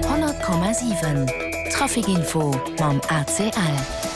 100,7 Trafic Info mam ACL.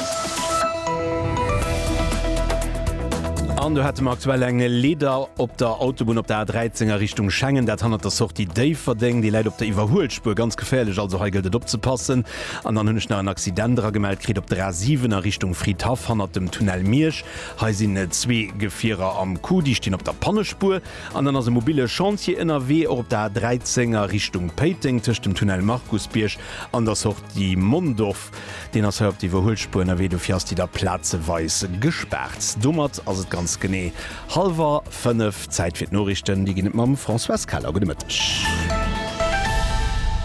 An do hätte mer aktuell eng Leeder op der Autobunn op der A13 a Richtung Schengen, dat hannert der Sortie Déifferdeng. Déi läit op der Iwwerhuelspur, ganz geféierlech, also hei gëllt et opzepassen. An dann hunn ech nach en Accident eragemellt kritt op der A7 a Richtung Fridhaff hannert dem Tunnel Miersch. Hei sinn zwee Gefierer am Coup, déi stinn op der Pannespur. An dann ass e mobille Chantier ënnerwee, och op der A13 a Richtung Péiteng, tëscht dem Tunnel Markusbierg an der Sortie Mondorf. Deen ass hei op der Iwwerhuelspuer ënnerwee, dofir ass déi da plazeweis gespaart. Domat ass et ganz genee hallwer fënnef. Zäit fir d'Noriichten, déi ginn et mam Françoise Keller. Gudde Mëtteg.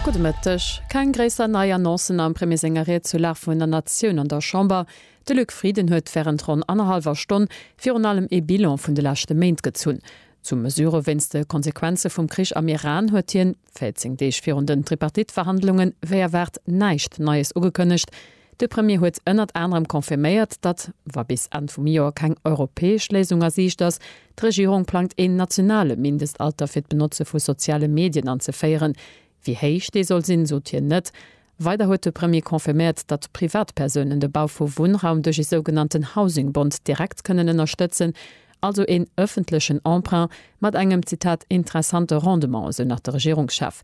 Gudde Mëtteg. Keng gréisser nei Annoncen am Premier senger Ried zur Lag vun der Natioun an der Chamber. De Luc Frieden huet wärend ronn annerhallwer Stonn virun allem ee Bilan vun de leschte Méint gezunn. Zu Mesure wéinst de Konsequenze vum Krich am Iran huet hien, 14 Deeg virun den Tripartite-Verhandlungen, wéi erwaart näischt Neies ugekënnegt. De Premier huet ënnert anerem confirméiert, datt, wa bis Enn vum Joer keng europäesch Léisung a Siicht ass, d'Regierung plangt een nationale Mindestalter fir d'Benotze vu soziale Medien anzeféieren. Wéi héich dee soll sinn, sot hien net. Weider huet de Premier confirméiert, datt Privatpersounen de Bau vu Wunnraum duerch ee sougenannten Housing Bond direkt kënnen ënnerstëtzen, also een ëffentlechen Emprunt mat engem, Zitat, interessante Rendement, esou nach de Regierungschef.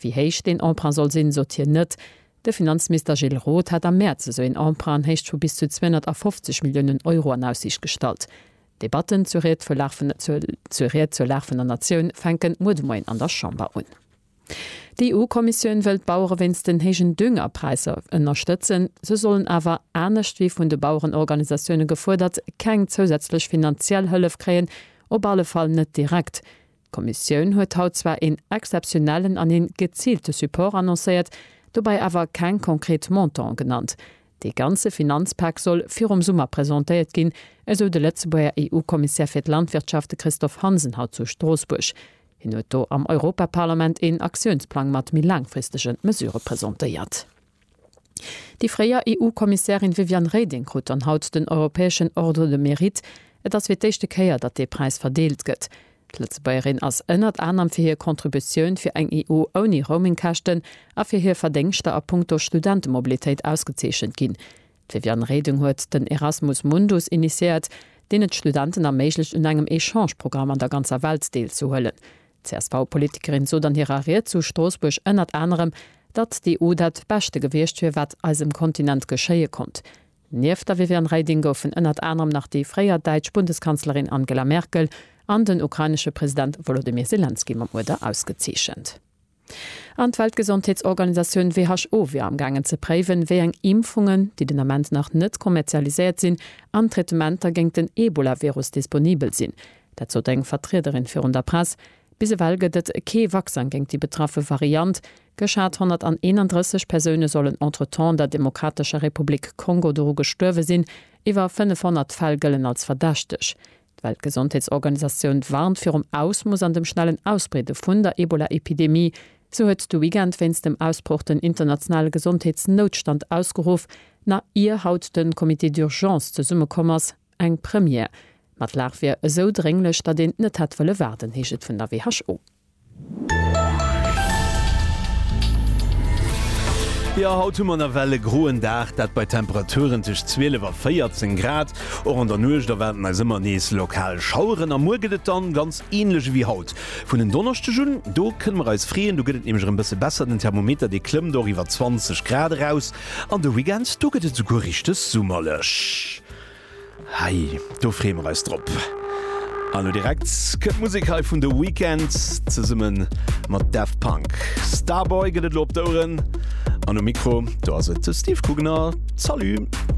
Wéi héich deen Emprunt soll sinn, sot hien net. De Finanzminister Gilles Roth hat am Mäerz esou een Emprunt an Héicht vu bis zu 250 Milliounen Euro an Aussiicht gestallt. D'Debatten zur Ried zur Lag vun der Natioun fänke muer de Moien an der Chamber un. D'EU-Kommissioun wëll d'Bauere wéinst den héijen Düngerpräisser ënnerstëtzen. Se sollen awer, anescht wéi vun de Bauerenorganisatioune gefuerdert, keng zousätzlech finanziell Hëllef kréien, op alle Fall net direkt. D'Kommissioun huet haut zwar een exzeptionellen an een geziilte Support annoncéiert, dobäi awer keng konkret Montanten genannt. Dee ganze Finanzpak soll virum Summer presentéiert ginn, esou de Lëtzebuerger EU-Kommissär fir d'Landwirtschaft, de Christophe Hansen, haut zu Stroossbuerg. Hien huet do am Europaparlament een Aktiounsplang mat méi laangfristege Mesurë presentéiert. Déi fréier EU-Kommissärin Viviane Reding krut dann haut den europäeschen Ordre de Mérite. Et ass fir d'éischte Kéier, datt dee Präis verdeelt gëtt. D'Lëtzebuergerin ass ënnert anerem fir hir Contributioun fir eng EU ouni Roaming-Käschten a fir hir Verdéngschter a punkto Studentemobilitéit ausgezeechent ginn. D'Viviane Reding huet den Erasmus Mundus initiéiert, deen et Studenten erméiglecht un engem Echange-Programm an der ganzer Welt deel ze huelen. D'CSV-Politikerin sot an hirer Ried zu Stroossbuerg ënnert anerem, datt d'EU dat Beschte gewiescht wier, wat eisem Kontinent geschéie konnt. Nieft der Viviane Reding goufen ënnert anerem nach déi fréier däitsch Bundeskanzlerin Angela Merkel an den ukrainesche President Wolodymyr Selenskyj mam Uerder ausgezeechent. An d'Weltgesondheetsorganisatioun WHO wier am gaangen ze préiwen, wéi eng Impfungen, déi den Ament nach net kommerzialiséiert sinn, an Traitementer géint den Ebola-Virus disponibel sinn. Dat sot eng Vertriederin virun der Press. Bis ewell gëtt et kee Vaccin géint déi betraffe Variant. Geschat 131 Persoune sollen entretemps an der Demokratescher Republik Kongo doru gestuerwe sinn. Iwwer 500 Fäll gëllen als verdächteg. D'Weltgesondheetsorganisatioun warnt virum Ausmoos an dem schnellen Ausbreede vun der Ebola-Epidemie. Sou huet de Weekend wéinst dem Ausbroch den internationale Gesondheetsnoutstand ausgeruff, nach ier haut de Comité d'urgence zesumme komm ass. Eng Première. Ma d'Lag wier esou drénglech, datt een net hätt wëlle waarden, heescht et vun der WHO. Jo, haut hu mer nawell e groen Dag, dat bei Temperaturen tëscht 12 a 14 Grad. Och an der Nuecht erwaarden eis ëmmer nees lokal Schaueren a muer gëtt et dann ganz änlech ewéi haut. Vun en Donneschdeg un, do kënne mer eis freeën, do gëtt et nämlech erëm bësse besser, den Thermometer dee klëmmt och iwwer 20 Grad eraus an de Weekend, do gëtt et souguer richteg summerlech. Hei, do freeë mer eis drop! An elo direkt kënnt d'Musek hei vun The Weeknd zesumme mat Daft Punk. Starboy gëtt et elo op d'Oueren an um Mikro do ass et de Steve Coogener. Salut!